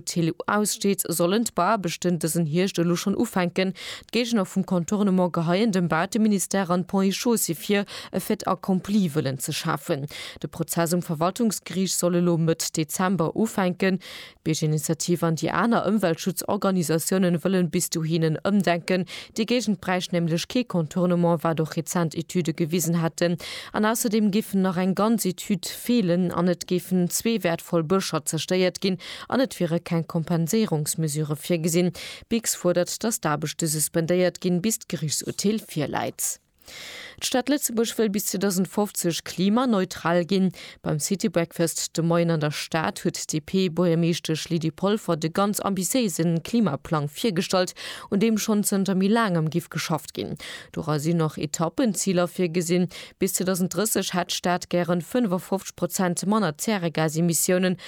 Tele U aussteet, sollen d'Bauaarbechten dësen Hierscht elo schonn ufänken. D'Géigner vum Contournement geheien dem Baateministère an d'Ponts et Chaussées vir, e Fait accompli wëllen ze schafen. De Prozess um Verwaltungsgeriicht soll elo Mëtt Dezember ufänken. D'Biergerinitiativ an déi aner Ëmweltschutzorganisatiounen wëllen bis dohin en Ëmdenken. Déi Géigend bräicht nämlech kee Contournement, wat och rezent Etüde gewisen hätten. An ausserdeem géifen nach eng ganz Etüd feelen an et géifen zwee wäertvoll Bëscher zerstéiert ginn, An et wiere keng Kompenséierungsmesure virgesinn. D'BIGS fuerdert, datt d'Aarbechte suspendéiert ginn, bis d'Gerichtsurteel virläit. D'Stad Lëtzebuerg wëll bis 2050 klimaneutral ginn. Beim City Breakfast de Moien an der Stad huet d'DP-Buergermeeschtesch Lydie Polfer de ganz ambitiéise Klimaplang virgestallt, un deem schonn zënter méi laangem géif geschafft ginn. Dora sinn och Etappenziler virgesinn. Bis 2030 hätt d'Stad gären 55 Prozent manner Zäregasemissiounen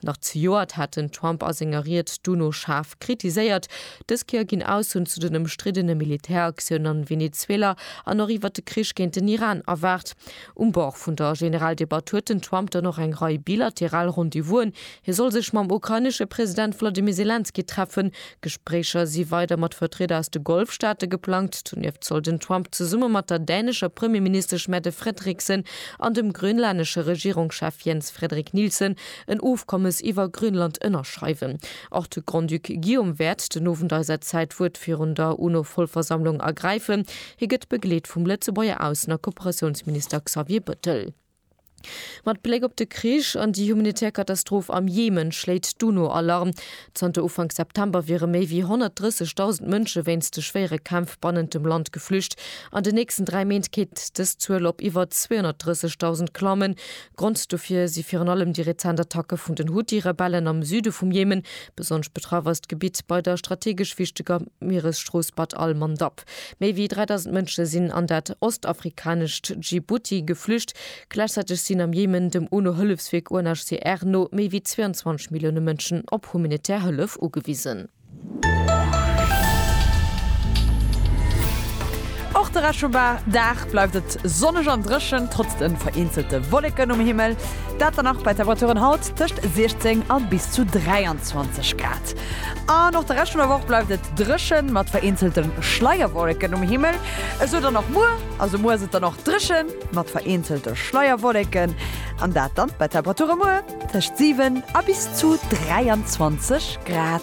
Nach zejoert hat den Trump a senger Ried d'UNO schaarf kritiséiert. Dës Kéier ginn Aussoen zu den ëmstriddene Militäraktioun an Venezuela an och iwwert de Krich géint den Iran erwaart. Um Bord vun der Generaldebatt huet den Trump dann och eng Rei bilateral Rendezvousen. Hie soll sech mam ukrainesche President Wladimir Selenskyj treffen, D'Gespréicher si weider mat Vertrieder aus de Golfstaate geplangt. Donieft soll den Trump zesumme mat der dänescher Premierministesch Mette Frederiksen an dem grönlanesche Regierungschef Jens Frederik Nielsen en Ofkommes iwwer Grönland ënnerschreiwen. Och de Grand-Duc Guillaume wäert den Owend eis säi Zäitwuert virun der UNO-Vollversammlung ergräifen. Hie gëtt begleet vum Lëtzebuerger Aussen a Kooperatiounsminister Xavier Bëttel. Mat Bléck op de Krich an déi humanitär Katastroph am Jemen schléit d'UNO Alarm. Zanter Ufank September wiere méi wéi 130.000 Mënsche wéinst de schwéiere Kämpf bannent dem Land geflücht. An den nächsten dräi Méint kéint dës Zuel op iwwer 230.000 klammen. Grond dofir si virun allem déi rezent Attacke vun den Huthi-Rebellen am Süde vum Jemen. Besonnesch betraff ass d'Gebitt bei der strategesch wichteger Mieresstrooss Bab al-Mandab. Kap. Méi wéi 3.000 Mënsche sinn an dat ostafrikanescht Djibouti geflücht. Gläichzäiteg sinn am Jemen, dem UNO-Hëllefswierk UNHCR no, méi wéi 22 Millioune Mënschen op humanitär Hëllef ugewisen. Och de Reschoba Dag bleift et sonneg an dréchen, trotz de vereenzelte Wolleken um Himmel. Dat dann nach bei Temperaturen haut tëscht 16 a bis zu 23 Grad. An och de Rescht vun der Woch bleift et dréchen, mat vereenzelte Schleierwolleken um Himmel. Esou dann och muer, also muer ass et dann och dréchen, mat vereenzelte Schleierwolleken, an dat dann bei Temperature muer tëscht 7 a bis zu 23 Grad.